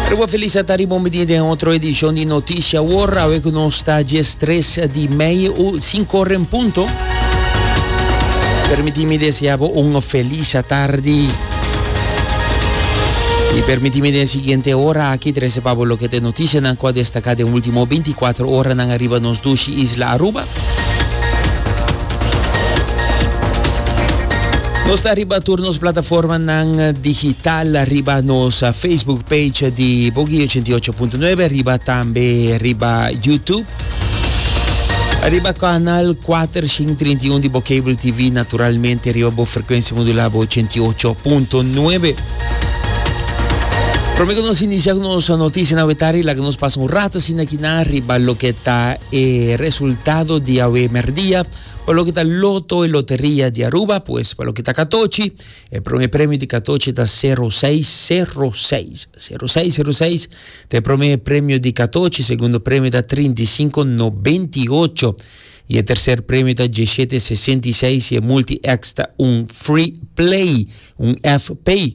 Riba Felisa ta riba un bidie den otro edicion di Noticia Awor. Awe cu nos ta dies tres di mei u cinco ora en punto. Permiti mi desea bo un feliz atardi. Y permiti mi den siguiente ora aki trece pa bo loke te noticianan cu a destaca den ultimo 24 oranan ariba nos dushi isla Aruba. Nos ta riba tur nos plataformanan digital, riba nos Facebook page di Bogey 88.9, riba tambe riba YouTube. Arriba canal 431 di Bocable TV, naturalmente arriba bo frecuencia modulada 88.9. Prometo nos inicia con nos noticia na wetari, la que nos pasa un rato sin aquí na arriba lo que está e resultado di awe merdia pa loke ta loto y loteria di Aruba, pues pa loke ta katochi, e prome premio di katochi ta sero seis, sero seis, sero seis, sero seis ta e prome premio di katochi, segundo premio ta trinta y sinku nobenta y ocho y e terser premio ta dieshete sesenta y seis y e multi-X ta un Free Play, un F-Pay.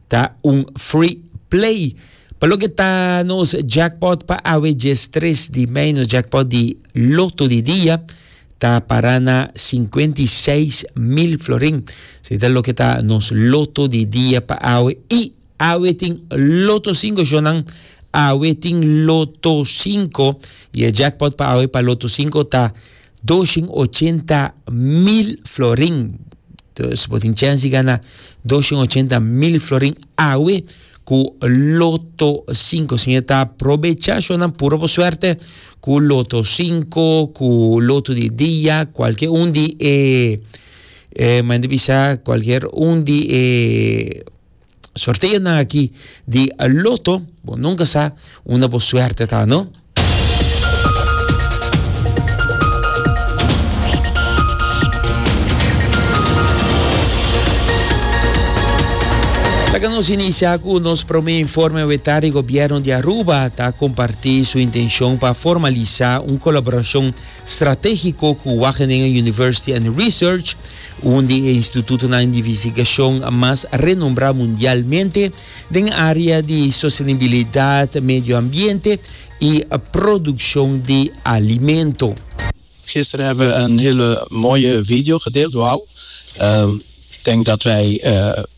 Ta un free play. Pa loke ta nos jackpot pa awe djes tres di mei, nos jackpot di loto di dia ta para na sinkuenta i seis mil florin. Se ta loke ta nos loto di dia pa awe. I awe tin loto sinko shownan. Awe tin loto sinko. I e jackpot pa awe pa loto sinko ta. Dos shin ochenta mil florin. Dus bo tin chens di gana dos shin ochenta mil florin awe ku Loto sinku. Sin e ta probecha shonnan pura bo suerte ku Loto sinku, ku Loto di dia, kualkier un di e, eh, men di bisa, kualkier un di e. Sorteo nan aki di Lotto, bo nunca sa unda bo suerte ta no. Laga nos inicia cu nos prome informe weta di gobierno di Aruba ta comparti su intencion pa formalisa un colaboracion strategico cu Wageningen University and Research Un di e institutonan di investigashon mas renombrá mundialmente den área di sostenibilidat, medio ambiente i produkshon di alimento. Gister heb we een hele mooie video gedeeld. Wauw! Denk dat wij